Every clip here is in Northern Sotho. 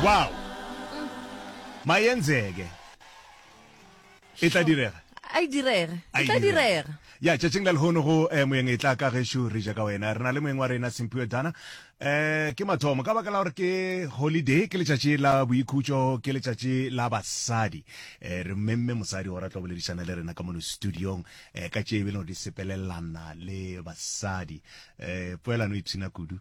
Wow! Mayenzeke. E tla direga. A e direga. E tla direga. Ya, tšatšing la lehono go eh, moyeng e tla ka gešo re ja ka wena. Re na le moyeng wa rena Simphiwe Dana. Eh, ke mathomo ka baka la gore ke holiday, ke letšatši la boikhutšo, ke letšatši la basadi. Eh, re mmemme mosadi gore a tlo boledišana le rena ka mono studiong eh, ka tše e be le gore di sepelelana le basadi. Eh, poelano e pshina kudu.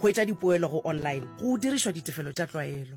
Hwetša dipoelo go online go dirišwa ditefelo tša tlwaelo.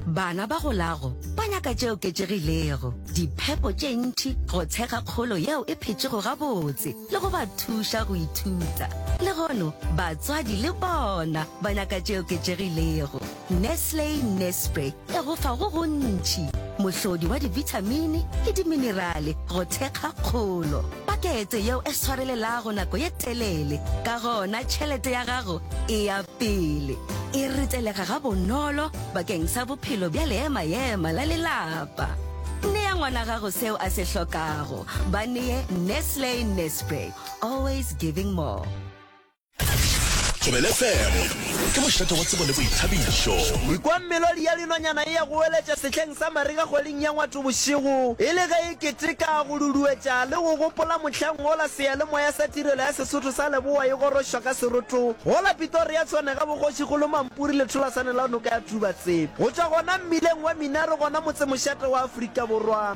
Bana ba golago ba nyaka tše oketšegilego, diphepo tše ntši, go tshega kgolo yeo e phetšego gabotse le go ba thuša go ithuta. Legono batswadi le bona ba nyaka tše oketšegilego. Nestle Nespre. E go fa go gontši, mohlodi wa dibithamini le diminerale go thekga kgolo. Pakete yeo e swarelelago nako ye telele, ka gona tšhelete ya gago e ya pele. E ritelega gabonolo bakeng sa bophelo bja leema-ema la lelapa. Nea ngwana gago seo a se hlokago. Ba nee Nestle Nespre, always giving more. Thobele FM ke mošate wa tsebo le boithabišo. Ke kwa melodi ya dinonyana e ya go weletša sehleng sa marega kgweding ya ngwato bošego, e le ge e keteka, go duduetša le go gopola mohlang wola seyalemoya sa tirelo ya Sesotho sa Leboa e gorošwa ka seroto go la Pitoria Tshwanega bogošigolo Mampuri letholasane la noka ya Tubatsebe go tšwa gona mmileng wa Minaro gona motsemošate wa Afrika Borwa.